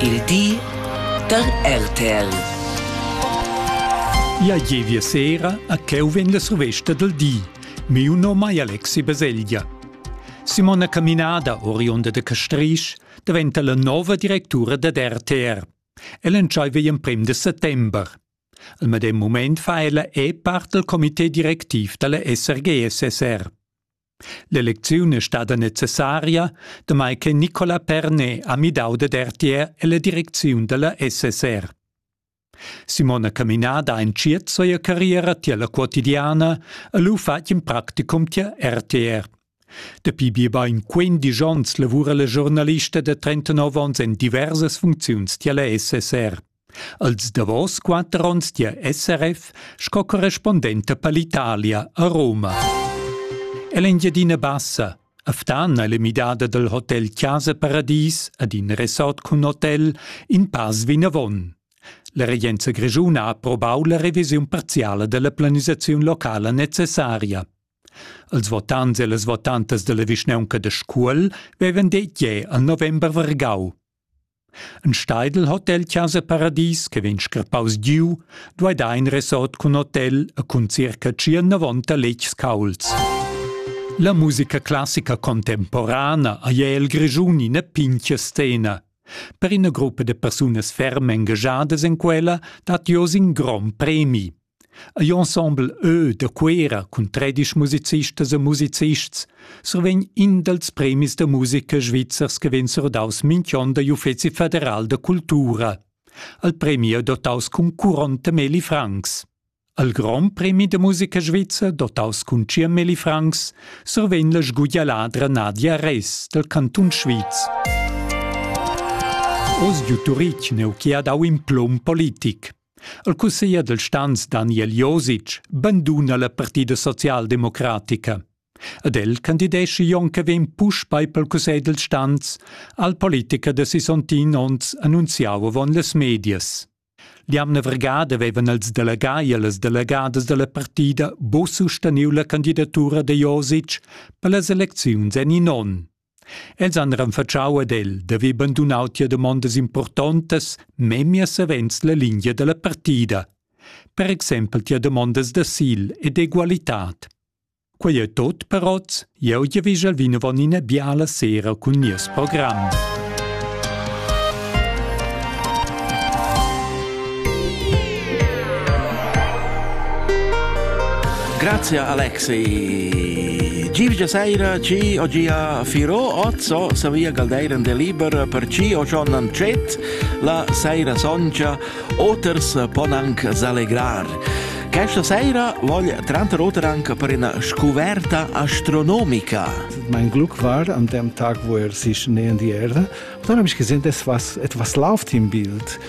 Il di da RTL. Ja gievia sera a cheu vegn la survesta del di. Miu nom ei Alexi Baselgia. Simona Caminada, oriunda de Castrisch, diventa la nova directura dad RTR. Ella entscheiva in prim de settember. Al medem moment fa ella è part del comité directiv dalla SRG-SSR. L'elecziun è stada necessaria, damai che Nicolas Pernet ha midau dad RTR ella direcziun dalla SSR. Simona Caminada ha entschiet sia carriera tier la quotidiana e lu fatg in practicum tier RTR. Dapi biebein 15 onns lavura la giornalista da 39 onns en diversas funcziuns tier la SSR. Als davos quatter onns dia SRF sco correspondenta per l'Italia a Roma. È l'Engiadina Bassa, Aftana è l'emidada dal hotel Chiasa Paradis ad in resort cun hotel in pass vinavon. La regenza grischuna ha approbau la revisiun parziala della planisazione locala necessaria. Als votants e las votantas della vischnaunca de Scuol vevan detg jeu al november vargau. Ein Steidl Hotel Chasa Paradies che vegn scrappaus giu, duei dar in resort cun hotel e cun circa tschient-novanta letgs caulds. La musica classica contemporana ei el Grischun ina pintga scena. Per ina gruppa da persunas ferm engagiadas en quella dat jeu in grond premi. Ei ensemble ö da Cuera cun tredisch musicistas e musicists survegn in dals premis da musica svizzers che vegn surdaus mintg'onn dagl Uffeci federal da cultura. Al premi è dotaus cun curont da Meli Franks. Al Grand Premi da musica svizzer, dotaus cun Cia Meli Franks, survegn la sguglialadra Nadia Res dal Cantun Sviz. Oz giu Turitg neu chi ha dau in plum politic. Il cusseglier dal stans Daniel Josic banduna la partida socialdemocratica. Ed el candidescha Jon che vegn puspei pel cussegl dal stans al politicher da sisontin onns annunziau avon las medias. L'jamna vergada vevan els delegai e las delegadas dalla partida bo susteniu la candidatura da Josic per las elecziuns en in onn. Els han renfatschau ad el da haver bandunau tia damondas impurtontas memia savens la lingia dalla partida, per exempel tia damondas d'asil e d'egualitad. Quei ei tot per oz, jeu giavischel vinavon ina biala sera cun nies program. Grazie Alexei. Giovgia sera ci oggi a Firo Ozzo Savia Galdeiran de Liber per ci o John Ancet la sera soncha oters pon anche allegrar. Questa sera voglio tranter oters anche per una scoperta astronomica. Mein Glück war an dem Tag, wo er sich nähern die Erde, und dann habe ich gesehen, es was, etwas läuft im Bild.